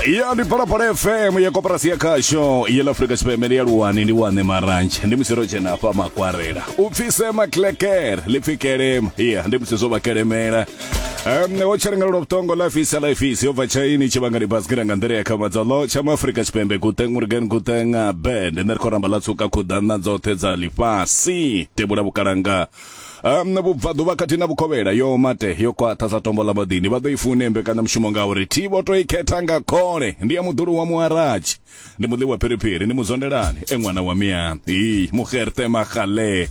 ya ndi phalaphala fm ya koporasi ya khasho ya afrika tshipembe ndi ya luwani ndi wane marantshe ndi misiro tshena hafha makwarela u pfise maklekere ḽi pfi kelema ya ndi musi zwo vha kelemela Um, wo tshalangalelwa vhuṱongo la fisa la fisi yo bva tshaini tshivhangani basikira nga nḓila ya khamadzalo tsha muafrika tshipembe guteng urgen guteng band nṋe ri khou ramba ḽa tsuka khuḓana dzoṱhe dza ḽifhasi tebula vhukalanga um vhubvaḓuvha khathihi na vhukovhela yo mate yo kwaṱha sa tombo ḽa maḓini vha ḓo i fune mbekanyamushumo ngauri thi vho to i khetha nga khole ndi ya muḓulu wa muharatshi ndi muḓi wa phiriphiri ndi muzondelani e ṅwana wa mia i muxerte magale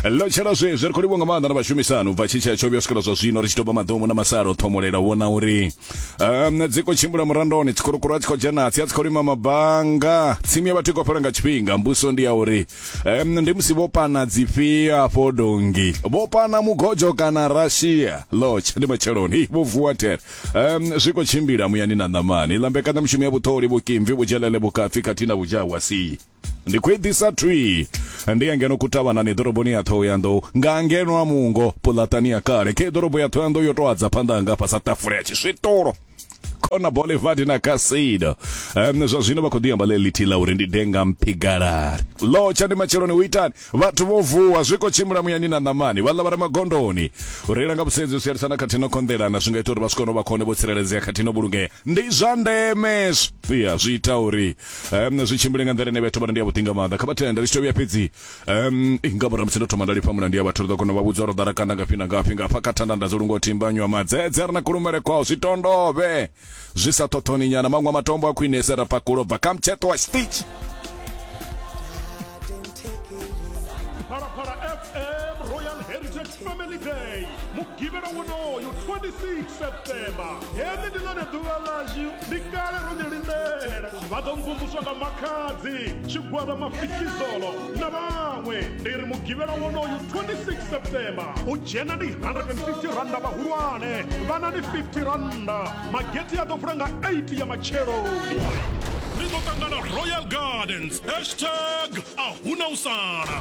ḽo tshela zwezwi ri khou livho nga maanḓa na vhashumisani u bva tshitshea tsho vhuya swikela zwa zwino ri tshi tou vha maḓomu na masalo o ṱhomolela u vhona uri um dzi khou tshimbila murandoni tsikhurukuru a tshi khou dzhenatsi a tshi khou lima mabanga tsimu ya vhathu i khou fhela nga tshifhinga mbuso ndi ya uri um, ndi musi vho pana dzifhio afho dongi vho pana mugojo kana russia lodge ndi matsheloni Hi, vho vuwa tere um, zwi khou tshimbila muyani na ṋamani iḽa mbekanyamushumo ya vhuṱholi vhukimvi vhudzhelele vhukafhi khathihi na vhudzhawa si ndi khou eḓisa thwi ndi ya ngeno kutavhanani ḓoroboni ya thohoyanḓou nga ngeno a mungo puḽatani ya kale khe ḓorobo ya thohoyanḓou yo tou adza phanḓa hanga fhasa tafula ya tshiswitolo kona bolevadi na kasida um, zwa zwino vha khou ḓi amba ḽe ḽithihi ḽa uri ndi denga mphigalari lotsha ndi matsheloni u itani vhathu vho vuwa zwi khou tshimbila muyani na ṋamani vhaḽa vha re magondoni u reila nga vhusedzi u sielisana khathihi no konḓelana zwi nga ita uri vha swikone vha khone vho tsireledzea khathihi no vhulungea ndi zwa ndeme ya zwi ita uri um, zwi tshimbile nga nḓila ine vhethu vhana ndi ya vhuḓi nga maanḓa kha vha thenda ri tshi to vhuya fhedzi um i nga murahu musi ndo thoma nda lifha mulandu ya vhathu ri ḓo kona u vha vhudza uri ḓara kanda ngafhi na ngafhi nga hafha kha thanda nda dzo lungo timbanywa madzedze ri na kulumele kwao zwi tondove zwi sa ṱhoṱhoni nyana maṅwe a matombo a khwinese ra pakulo bva kha mutsheṱo wa stitch Parapara FM Royal Heritage Family Day mugivhela wonoyo 26 September heḽi ndi ḽone ḓuvha ḽashu ndi kale ro ni lindela vha ḓo mvumvuswa nga makhadzi tshigwada mafikizolo na vhaṅwe ndi ri mugivhela wonoyu 26 september u dzhena ndi 150 randa vhahulwane vhana ndi 50 randa mageti a ḓo vula nga 8 ya matsheloni ri ḓo ṱangana royal gardens hashtag a huna u sala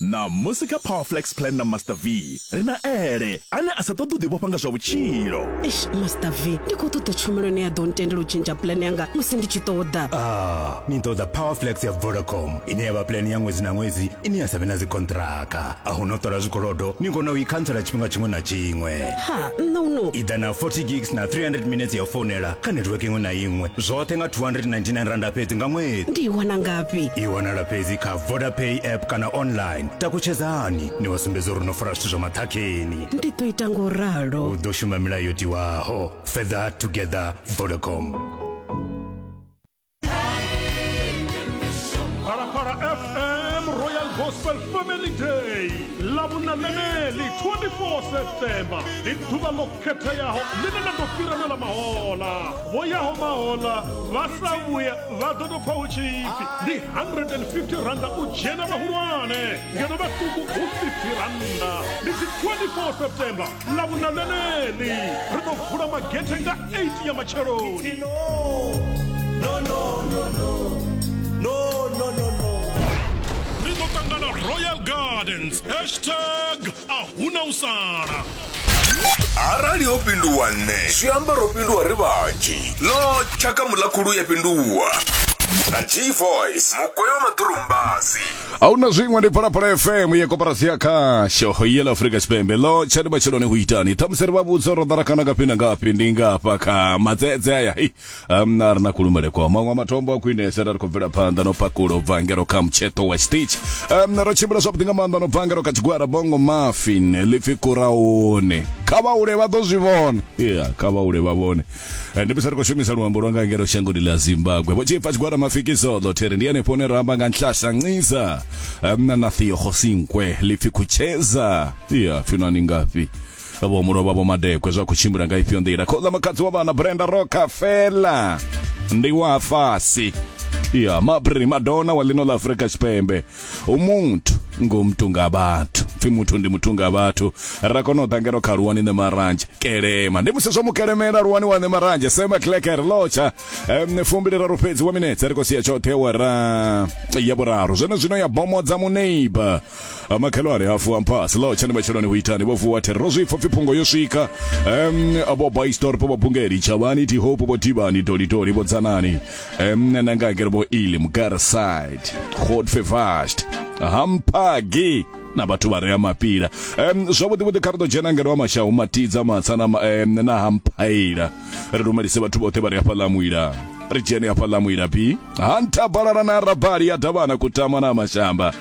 Ṋamusi kha Power Flex Plan na Master V, ri na Ele, ane a sa ṱoḓi u ḓivhofha nga zwa vhutshilo. Eish, Master V, ndi khou ṱoḓa tshumelo ine ya ḓo ntendela u tshentsha plan yanga musi ndi tshi ṱoḓa. Ah, ni ṱoḓa Power Flex ya Vodacom, ine ya vha plan ya ṅwedzi na ṅwedzi ine ya sa vhe na dzikonṱhiraka. A hu na u ṱola zwikolodo, ni kona u i khantsela tshifhinga tshiṅwe na tshiṅwe. Ha, nṋe u no. I ḓa na 40 gigs na 300 minetse ya u founela kha netiweke iṅwe na iṅwe, zwoṱhe nga R299 fhedzi nga ṅwedzi. Ndi i wana ngafhi? I wanala fhedzi kha. vodapay app kana online takutshedzani ni wa sumbedza uri no fara zwithu zwa maṱhakheni ndi ḓo ita ngo ralo u ḓo shuma milayo yo tiwaho further together vodacom Parapara FM Royal Gospel Family Day. Labunanene, 24 September. Ituba khetheaho ḽine ḽa ḓo fhira na ḽa mahola vho yaho mahola vha sa vhuya vha ḓo tou pfa hu tshipfi ndi 150 randa u dzhena vhahulwane ngeno vhaṱuku hu 50 randa ndi dzi 24 september ḽa vhuna ḽeneḽi ri ḓo vula magethe nga 8 ya matsheloni no, no, no, no, no. No, no, no, no. ri ḓo ṱangana royal gardens hashtag a huna u sala arali ho pinduwa nṋe zwi amba ro pinduwa ri vhanzhi ḽo tshaka muḽakhulu ya pinduwa na g voice mukwe wa maḓurumbasi a hu na zwiṅwe ndi phalaphala fm ye koporasi ya khasho ye ḽa afurika tshipembe ḽo tshani matsheloni hu itani ṱhamusi ri vha vhudza ro ḓara kana ngafhi na ngafhi ndi ngafha kha madzedze aya um, a ri na kulumbele kwa maṅwe matombo a khwinesa ra ri khou bvela phanḓa no pakula u bva ngero kha mutsheṱo wa stitch um, ro tshimbila zwavhuḓi nga maanḓa no bva ngero kha tshigwara bongo mafin lipfi kuraone kha vhaule vha ḓo zwi vhona yeah, kha vhaule vha vhone Eh, ndi bisa ri khou shumisa luambo lwa nga ngero shangoni ḽa zimbabwe vho tshipfa tshigwara mafikisoḓo theri ndi henefho hune ra amba nga nhlahla nciza um, na na thiyohosinkwe lipfi khutsheza iya pfino ani ngafhi vho muno vha vho madekwe zwa khou tshimbila nga ifhio nḓila khoza makadzi wa vhana brenda roka fela ndi wa fasi ya mabri madona wa lino la afrika tshipembe umuntu ngumntu ngabantu pfi muthu ndi muthu nga vhathu ra kona u ḓangela kha luwani ne maranzhe kelema ndi musi zwo mukelemela luwani wa ne maranzhe sema kleker locha um, fumbili raru fhedzi wa minetse ri khou sia tshoṱhe wara ya vhuraru zwone zwino ya bomodza muneiba amakhelwane afu amphasi lo tshani matshiloni hu itani vho vuwa thero zwi pfa phungo yo swika em abo by store po bungeli chavani ti hope bo divani doli doli bo dzanani em na nga ngere bo ili mugara side god fevast hampagi na vhathu vha rea mapila um zwavhuḓi vhuḓi kha ri ḓo dzhena ngeno wa mashau matidza matsa na um, na hamphaila ri lumelise vhathu vhoṱhe vha re hafha ḽa muila ri dzhene hafha ḽa muila bi hanta balala na rabali ya davhana kutama na mashamba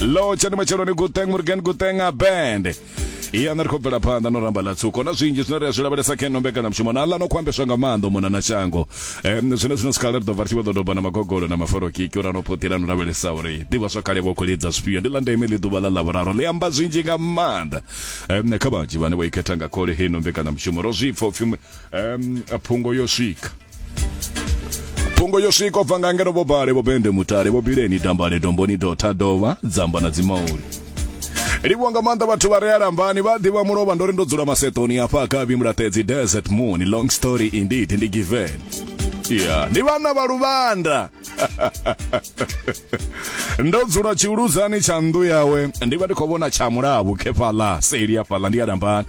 lo tshani matsheloni guteng murgen guteng a band iya na ri khou bvela phanḓa no ramba ḽa tsuko na zwinzhi zwine ri a zwi lavhelesa khe no mbekanyamushumo na ḽa no khou ambeswa nga maanḓo mona na shango um zwine zwino sikhala ri ḓo bva ri tshi vho ḓo doba na magogolo na maforokiki uri a no phuṱila no lavhelesa uri ḓivha zwa kale vho khou lidza zwifhio ndi ḽa ndeme ḽi ḓuvha ḽa ḽavhuraru ḽi amba zwinzhi nga maanḓa um kha vhanzhi vhane vho ikhetha nga khole hei no mbekanyamushumo ro zwi pfa upfhi um, phungo yo swika phungo yo swika ubva nga ngeno vho bale vho bende mutale vho bileni dambale domboni dotha dovha dzamba na dzimauli livhuwa nga maanḓa vhathu vha rea lambani vha ḓivha mulovha ndo ri ndo dzula masetoni afha akavhi mulaṱedzi desert moon long story indeed ndi given ya ndi vhana vha luvanda ndo dzula tshiuludzani tsha nnḓu yawe ndi vha ndi khou vhona tsha mulavhu khefhaḽa seli afhaḽa ndi ya lambani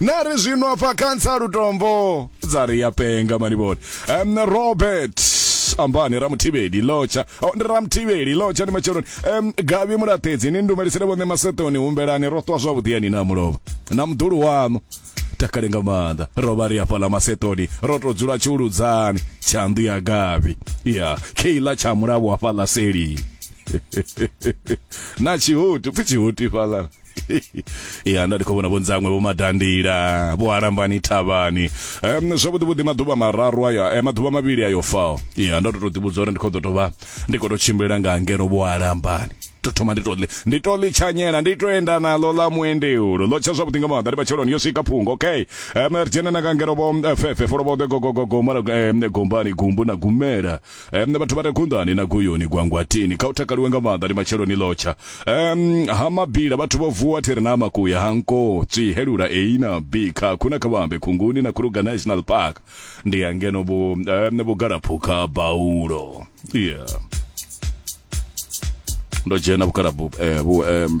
na ri zwino afha khansa lutombo dza ri ya penga manivhoni um robert ambani ramuthivheli lotsha oh, ndi ramuthivheli lotsha ndi matsheloni um gavi mulaṱedzi ni ndumelisele vhone masetoni humbelani ro ṱwa zwavhuḓi yani na mulovha na muḓulu waṋu takale nga maanḓa ro vha ri afhaḽa masetoni ro tou dzula tshiuludzani tshanḓu ya gavi ya keila tsha mulavo afhaḽa seli na tshihutu pfi tshihutu ifhaḽa ya nda ndi khou vhona vhonzangwe vho madandila vho alambani thavhani um, zwavhuḓi vhuḓi maḓuvha mararu ayo eh, maḓuvha mavhili ayo fao ya ndo to to ḓivhudza uri ndi khou ḓo tovha ndi khou to tshimbila nga ngeno vho alambani to thoma ndi to ḽi ndi to ḽi tshanyela ndi to enda naḽo ḽa muendeulo ḽo tsha zwavhuḓi nga maanḓa ndi matsheloni yo swika phungo okay um, ri dzhena na nga ngeno vho eh, fefe folo vho ḓe gogogogo mara um, gombani gumbu na gumela Um, vhathu vha re kunḓani na guyuni gwangwatini kha u takaliwe nga maanḓa ndi matsheloni lotsha um, ha mabila vhathu vho vuwa thiri na makuya ha nko tswihelula a na b kha khuna kha vhambe khunguni na kruger national park ndi ya ngeno vhu, um, vhugalaphukha baulo yeah ndo dzhena vhugalabu eh, vhu, um,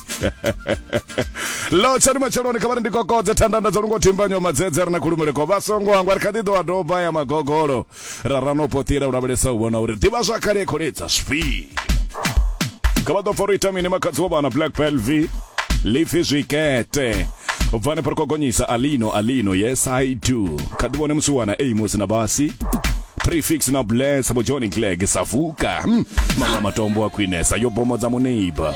lo tsha duma tsheloni kha vha ri ndi kokodze thandanda dzo lungo thimbanyo madzedze ri na khulumele ko vha songo hangwa ri kha ḓi ḓo wa doba ya magogolo ra rano potila u lavhelesa u vhona uri ḓivha zwa khale kholedza zwi kha vha ḓo foro ita mini makhadzi wa vhana black pelvi lifi zwikete u bva ne phoroko gonyisa alino alino yes i do kha ḓi vhone musi wana amos na basi prefix na bless bo john clegg savuka hmm. mama matombo a khwinesa yo bomo dza muneiba